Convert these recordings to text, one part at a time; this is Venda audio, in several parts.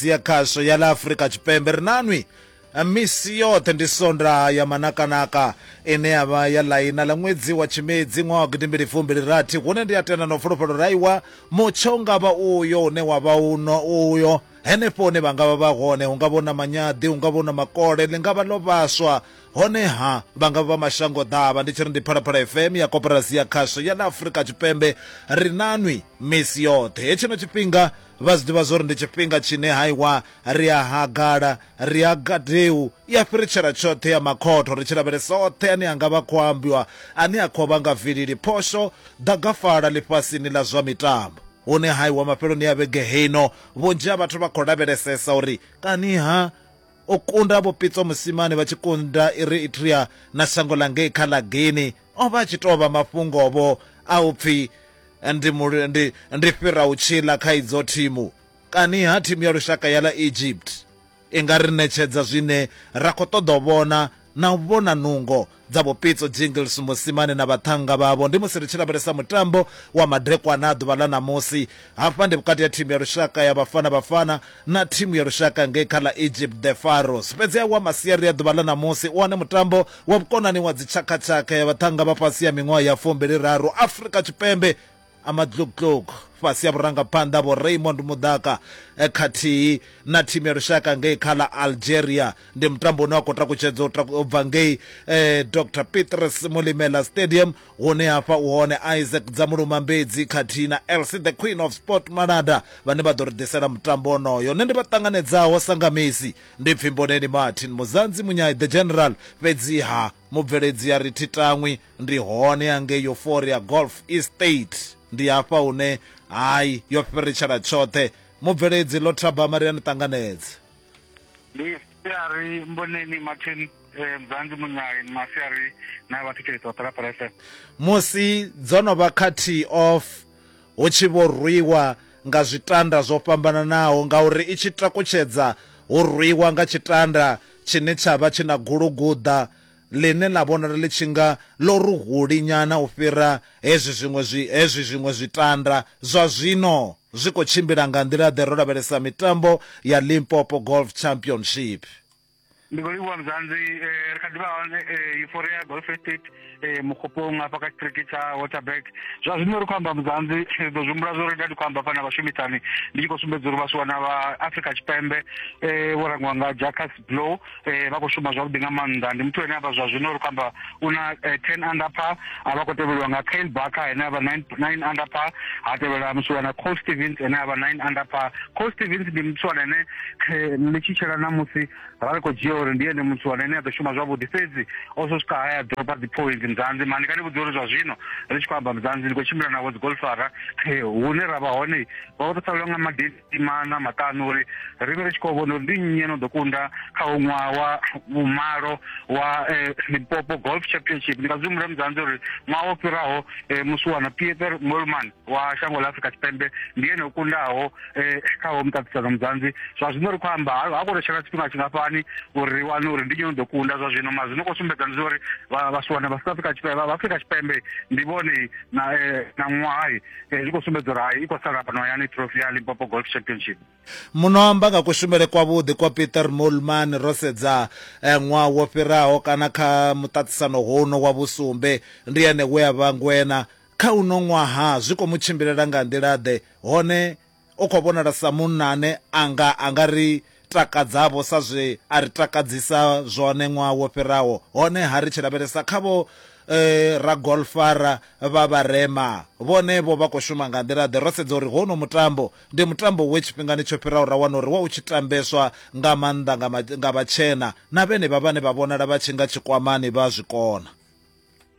Adventist ya khasho ya ḽa Afrika Tshipembe ri na nwi misi yoṱhe ndi sonda ya manakanaka ine ya vha ya ḽaina ḽa ṅwedzi wa tshimedzi ṅwaha wa gidimbili fumbili rathi hune ndi a tenda na fulufhelo ra iwa mutsho nga vha uyo une wa vha uno uyo henefho hune vha nga vha vha hone hu nga vha na manyaḓi hu nga vha na makole ḽi nga vha ḽo vhaswa honeha vha nga vha mashango ḓavha ndi tshi ri ndi phalaphala fm ya koporasi ya khasho ya ḽa afrika tshipembe ri na nwi misi yoṱhe hetshino tshifhinga Vha zwi ḓivha zwori ndi tshifhinga tshine ha iwa ri a hagala, ri a gadeu, i a fhiritshela tshoṱhe ya makhotho ri tshi lavhelesa oṱhe ane a nga vha khou ambiwa ane a khou vha nga vilili, phosho, ḓagafala ḽifhasini ḽa zwa mitambo. Hune ha iwa mafheloni a vhege heino, vhunzhi ha vhathu vha khou lavhelesesa uri kani-ha o kunda Vho Pitso Mosimane vha tshi kunda Eritrea na shango ḽa ngei kha ḽa Guinea. o vha a tshi tou vha mafhungovho a u pfi ndi, ndi, ndi fhira u tshila kha idzo thimu kani ha thimu ya lushaka ya ḽa egypt i nga ri ṋetshedza zwine ra khou ṱoḓa u vhona na u vhona nungo dza vhupitso jingles musimane na vhaṱhannga vhavho ndi musi ri tshi lavhelesa mutambo wa madekwana a ḓuvha ḽa ṋamusi Hafha ndi vhukati ha thimu ya lushaka ya Bafana Bafana na thimu ya lushaka ngei kha ḽa Egypt The Pharaohs. Fhedzi a wa masiari a ḓuvha ḽa ṋamusi u wane mutambo wa vhukonani wa dzitshakhatshakha ya vhaṱhannga vha fhasi ha miṅwaha ya fumbili raru Afrika Tshipembe a Matlugtlug fhasi ha vhurangaphanḓa ha Vho Raymond Muḓaka khathihi na thimu ya lushaka ngei kha ḽa Algeria. Ndi mutambo une wa khou takutshedzwa u bva ngei Doctor Petrus Molimela Stadium Hune ha fha u hone Isaac Dzamulumambedzi khathihi na Elsie the Queen of Sport Malanda vhane vha ḓo ri ḓisela mutambo wonoyo. Nṋe ndi vha ṱanganedzaho sa nga Messi ndi Pfimboneni Martin Muzanzi Munyai the General fhedziha mubveledzi a ri thi tangwi ndi hone hangei Euphoria Golf Estate. Ndi hafha hune hai yo fhiritshela tshoṱhe. Mubveledzi Ḽo Thabama ri a ni ṱanganedza. ndi siari mboneni martin eh, mzanzi munyai masiari na vhathetshelesi vha phalaphala fm musi dzo no vha kha tee off hu tshi vho rwiwa nga zwitanda zwo fhambananaho ngauri i tshi takutshedza hu rwiwa nga tshitanda tshine tsha vha tshi na guluguḓa ḽine ḽa vhonala ḽi tshi nga ḽo ruhuli nyana u fhira hezwi zwiṅwe zwi hezwi zwiṅwe zwitanda zwa zwino zwi khou tshimbila nga nḓila-ḓe ro lavhelesa mitambo ya Limpopo Golf Championship. Ndi khou livhuwa Mzanzi, ri kha ḓi vha hone Euphoria Golf Estate Mokgopong hafha kha tshiṱiriki tsha Waterberg. Zwa zwino ri khou amba Mzanzi, ri ḓo zwi humbula zwo ri nda ndi khou amba hafha na vhashumisani ndi tshi khou sumbedza uri vhaswa na vha Afrika Tshipembe vho rangiwa nga Jacques Blou, eh, vha khou shuma zwavhuḓi nga maanḓa ndi muthu ane avha zwa zwino ri khou amba u na eh, ten under par a vha khou tevheliwa nga kale baka ane avha nine under par ha tevhela musiwana col stevens ane avha nine under par col stevens ndi musiwana ane ḽi tshi tshela namusi ra ri khou dzhia uri ndi ene musiwana ane a ḓo shuma zwavhuḓi fhedzi o so swika haya dropa dzi point mzanzi mani kani vhudzi uri zwa zwino ri tshi khou amba mzanzi ndi khou tshimbila navho dzi golfara hune ra vha hone vha vho tou salelwa nga madeni maḓimana maṱanu uri ri vhe ri tshi khou vhona uri ndi nnyi no ḓo kunda kha u ṅwaha wa vhumalo wa eh, limpopo golf championship ndi nga zwi humbula mudzanzi uri ṅwaha wo fhiraho eh, musi wana pieter molman wa shango ḽa afrika tshipembe ndi yene o kundaho eh, kha ho muṱaṱisano mudzanzi zwa zwino ri khou amba ha ha khou tou tshela tshifhinga tshingafhani uri ri wane uri ndi nnyi no ḓo kunda zwa zwino ma zwino khou sumbedza ndi zwa uri vha- vhasiwana vha south africa tshipembe vha afrika tshipembe ndi vhone na eh, na ṅwaha eh, zwi khou sumbedza uri hai i khou sala fhano hayani trophy ya limpopo golf championship muno amba nga kushumele kwavhuḓi kwa peter molman ro sedza eh, ṅwaha wo fhiraho kana kha muṱaṱisano huno wa vhusumbe ndi ene we a vha ngwena kha uno ṅwaha zwi khou mu tshimbilela nga nḓila-ḓe hone U khou vhonala sa munna ane a nga a nga ri takadzavho sa zwe a ri takadzisa zwone ṅwaha wo fhiraho. Honeha ri tshi lavhelesa kha vho ragolfara vha vharema, vhone vho vha khou shuma nga nḓila-ḓe? Ro sedza uri hounoni mutambo ndi mutambo we tshifhingani tsho fhiraho ra wana uri wa u tshi tambeswa nga maanḓa nga vhatshena, na vhenevha vhane vha vhonala vha tshi nga tshikwamani vha a zwi kona.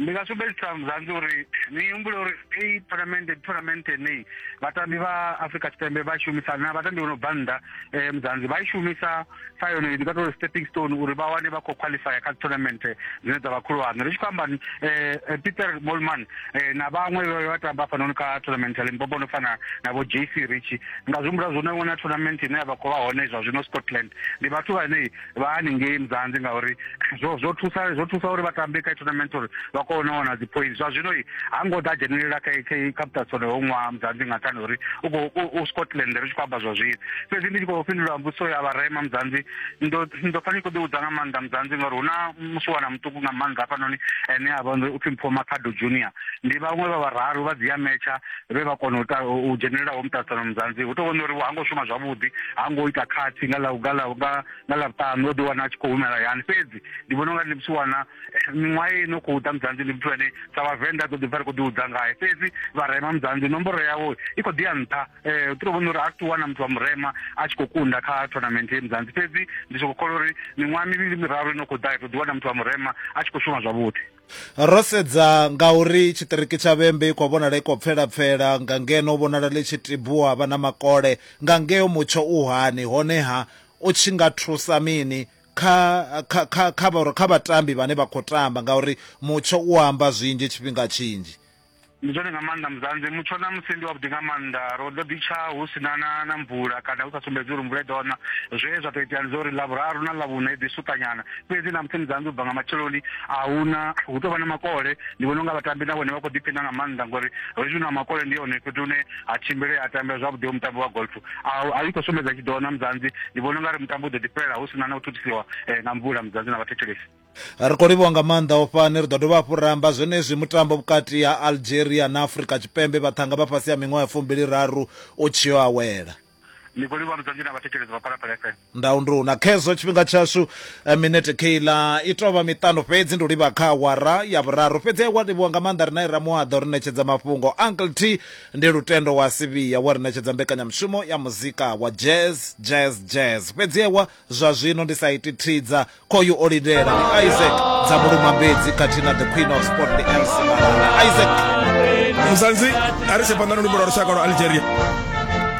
ndi nga sumbedzisa muzanzi uri ni humbule uri hei tournament ndi tournament yeneyi vhatambi vha afrika tshipembe vha shumisa na vhatambi vho no bva nnḓa um muzanzi vha i shumisa sa yone ndi nga tori stepping stone uri vha wane vha khou qualifya kha tournament dzine dza vha khulwane ri tshi khou amba um peter molman um na vhaṅwe vhe vha tamba hafhanoni kha tournament ya limpopo no fana na vho jc richi nga zwi humbula zwo no wana tournament ine ya vha khou vha hone zwa zwino scotland ndi vhathu vhane vha haningei mzanzi ngauri zwo zwo thusa zwo thusa uri vha tambe kha tournament uri vha kone u wana dzi point zwa zwino ha ngo ḓa dzhenelela kha kha kha muṱatsone ho ṅwaha mzanzi nga nṱhani uri u khou u scotland ri tshi khou amba zwa zwino fhedzi ndi tshi khou fhindula mbudziso ya vharema mzanzi ndo ndo pfa ndi khou ḓi udza nga maanḓa mzanzi ngauri hu na musiwana muṱuku nga maanḓa hafhanoni ene a vha upfhi mpho makhado junior ndi vhaṅwe vha vhararu vha dzi ametsha vhe vha kona u dzhenelelaho muṱaṱisano muzanzi hu tou vhona uri ha ngo shuma zwavhuḓi ha ngo ita khathi nga ḽa nga ḽa nga nga ḽa vhuṱanu o ḓi wana a tshi khou humela yani fhedzi ndi vhona unga ndi muthu wana eh, miṅwaha ye no khou ḓa muzanzi ndi muthu ane sa vhavenḓa a ḓo ḓi pfa ri khou ḓi hudza ngae fhedzi vharema muzanzi nomboro yawo i khou ḓi ya nṱha um u tou vhona uri a ri wana muthu wa murema a tshi khou kunda kha tournament ye muzanzi fhedzi ndi soko kholwa uri miṅwaha mivhili miraru ino khou ḓa i ḓo ḓi wana muthu wa murema a tshi khou shuma zwavhuḓi Ro sedza nga uri tshiṱiriki tsha Vhembe i khou vhonala i khou pfela-pfela, nga ngeno vhonala ḽi tshi tibuwa ha vha na makole. Nga ngeo mutsho u hani, honeha u tshi nga thusa mini kha, kha, kha, kha, kha vhatambi vhane vha khou tamba? Ngauri mutsho u amba zwinzhi tshifhinga tshinzhi. ndi zwone nga maanḓa muzanzi mutsho na musi ndi wavhuḓi nga maanḓa ro ḓo ḓi tsha hu si na na na mvula kana hu sa sumbedzi uri mvula i ḓo na zwe zwa tou itea ndi zwa uri lavhuraru na lavhuna i ḓi suṱanyana fhedzi na musi muzanzi u bva nga matsheloni a huna hu tou vha na makole ndi vhona unga vhatambi na vhone vha khou ḓiphina nga maanḓa ngori hezwi na makole ndi hone fhethu hune ha tshimbile a tambela zwavhuḓi mutambo wa golf a i khou sumbedza tshi ḓo na muzanzi ndi vhona unga ri mutambo u ḓo ḓi fhelela hu si na na u thuthusiwa eh, nga mvula muzanzi na vhathetshelesi Ri khou livhuwa nga maanḓa u fhani. Ri ḓo dovha hafhu ra amba zwenezwi mutambo vhukati ha Algeria na Afrika Tshipembe vhaṱhanga vha fhasi ha miṅwaha ya fumbiliraru u tshi yo awela. Ni khou livhuwa mudzanzhi na vhathetshelesi vha Phalaphala FM. Ndau ndi u na khezwo tshifhinga tshashu. Minete kheiḽa i tou vha miṱanu fhedzi, ndi u livha kha awara ya vhuraru. Fhedzi a wa livhuwa nga maanḓa ri nae Ramuaḓa o ri ṋetshedza mafhungo. Uncle T ndi Lutendo wa Sivhiya we a ri ṋetshedza mbekanyamushumo ya muzika wa Jazz, Jazz, Jazz. Fhedzi a wa. Zwa zwino ndi sa iti thidza khoyu o lindela ndi Isaac dza muluma mbedzi khathihi na the queen of sport ndi Elsie Malala Isaac Mzansi a ri tshe phanḓa na luimbo lwa lushaka lwa Algeria